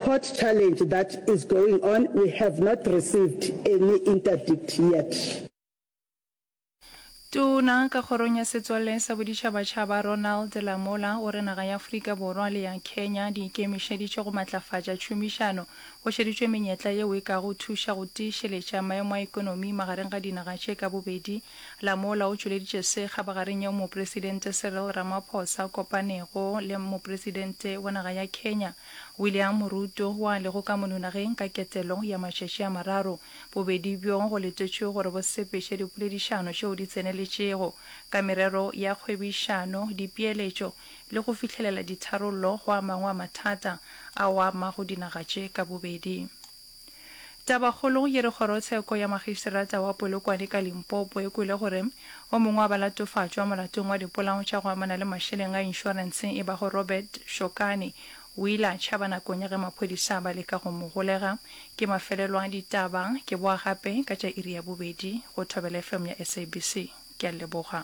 Court challenge that is going on, we have not received any interdict yet. Tona ka kgorong ya setswalle sa boditšhabatšhaba Ronald Lamola o re naga ya Afrika Borwa le ya Kenya di ikemišeditše go matlafatša tšhomišano. Go šeditšwe menyetla yeo e kago thuša go tiišeletša maemo a ekonomi magareng ga dinaga tše ka bobedi. Lamola o tšweleditše se kgabagareng yeo Mopresidente Cyril Ramaphosa kopanego le Mopresidente wa naga ya Kenya William Moruto, wo a lego ka mononageng ka ketelo ya matšatši a mararo, bobedi bjo go letetšwe gore bo sepeše dipoledišano tšeo di tseneletšego ka merero ya kgwebišano, dipeeletšo le go fihlelela ditharollo go a mangwe a mathata ao a amago dinaga tše ka bobedi. Tabakgolo ye re Kgorotsheko ya Magistrata wa Polokwane ka Limpopo e kwele gore o mongwe wa balatofatšwa molatong wa dipolao tša go amana le mašeleng a inšorense e bago Robert Shokane o ile a tšhaba nakong ya ge maphodisa ba leka go mo golega. Ke mafelelo a ditaba. Ke boa gape ka tša iri ya bobedi go Thobela FM ya SABC. Ke a leboga.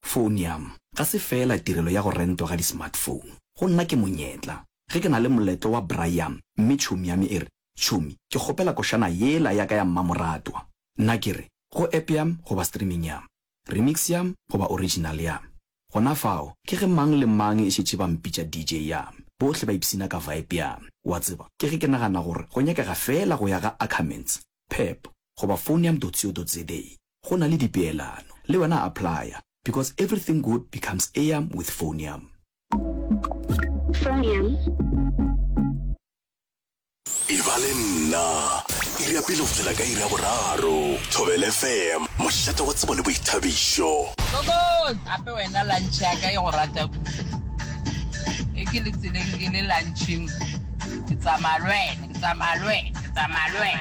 Phone ya m ga se feela tirelo ya go rentwa ga di-smartphone. Go nna ke monyetla. Ge ke na le moletlo wa braai ya m mme tšhomi ya me e re, Tšhomi, ke kgopela košana yela ya ka ya mmamoratwa, nna ke re, Go app ya m goba streaming ya m, remix ya m goba original ya m. Gona fao, ke ge mang le mang e šetše ba mpitša DJ ya m, bohle ba ipshina ka vibe ya m. Wa tseba, ke ge ke nagana gore go nyakega feela go ya ga Ackermans, Pep goba Phone ya m.co.za. go na le dipeelano le wena applya because everything good becomes eam with phoneam. E ba le nna, iri ya pele go fihlela ka iri ya boraro. Thobela FM, mošate wa tsebo le boithabišo. Kokos! Gape wena lunch ya ka e go rata kudu. E ke le tseleng ke le lunching. Ke tsamaya le wena, ke tsamaya le wena, ke tsamaya le wena.